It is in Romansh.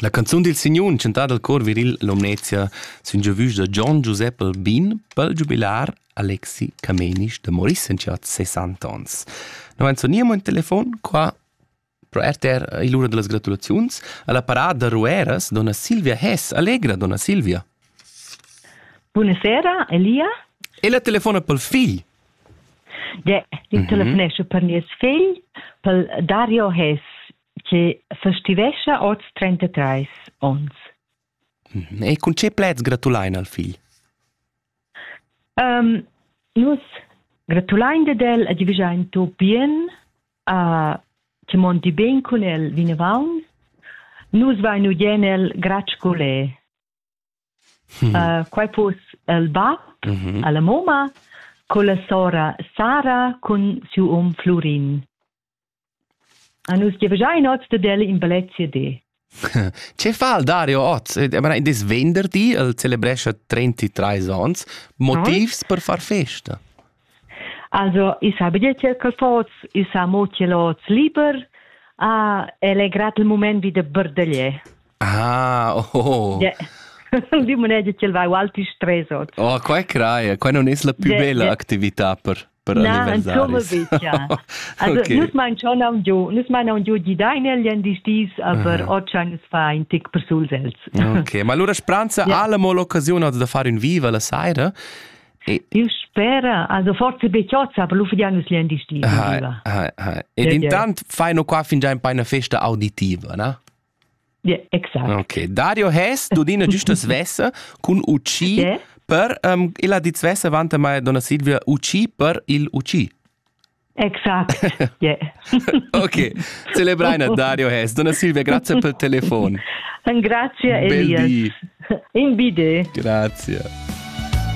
La canzun dil signun chantada al cor viril Lumnezia sun giu vus da Gian Giusep Albin pel giubilar Alexi Camenisch da Maurice Saint-Jacques 60 ans. No vain soniamo in telefon qua pro RTR e l'ura dellas gratulaziuns alla parada da Rueras donna Silvia Hess. Allegra donna Silvia. Buonasera Elia. E la telefona pel figl. Ja, ich mhm. telefonesche per nies figl, per Dario Hess, che festivescha oz 33 ons. Mhm. E cun che plaids gratulein al figl? Um, nus gratulein de del e divigiain tu bien a che mondi ben con el vinavant. Nus vainu jen el gratsch colè. Hmm. Uh, quai pos el bab mm -hmm. alla moma con la sora Sara cun siu um Flurin. A nus giavgia in oz de del in ballet CD. Ce fa il Dario oz? Des venderdi, el celebrescha 33 ans, motivs per far festa. Also, i sa bigliet quel fots, i sa mo ch'el oz liber, ah, el è grad il mument vi da berdaglier. Ah, oh. Yeah. Di moneda ch'el va alti stress oz. Oh, qua crai, qua non es la più yeah, bella yeah. actività per per Na, anzomavis. Also, okay. nus mein schon am giu, nus mein am giu di dein el jen dis dis, aber ah. ochan es fa in tic per sul els. okay, ma allora spranza yeah. alla mo l'occasione da fare un viva la saira. Il spera, also forse bechozza per l'uffidianus lien distinto. Ed intant faino qua fingià in paina festa auditiva, na? Ja, exakt. Okay. Dario Hess, du dina giusta svessa cun UC yeah. per um, illa dit svessa vanta mai donna Silvia UC per il UC. Exakt. Yeah. ok, celebraina Dario Hess. Donna Silvia, grazie per il telefono. Grazie Elias. In bide. Grazie.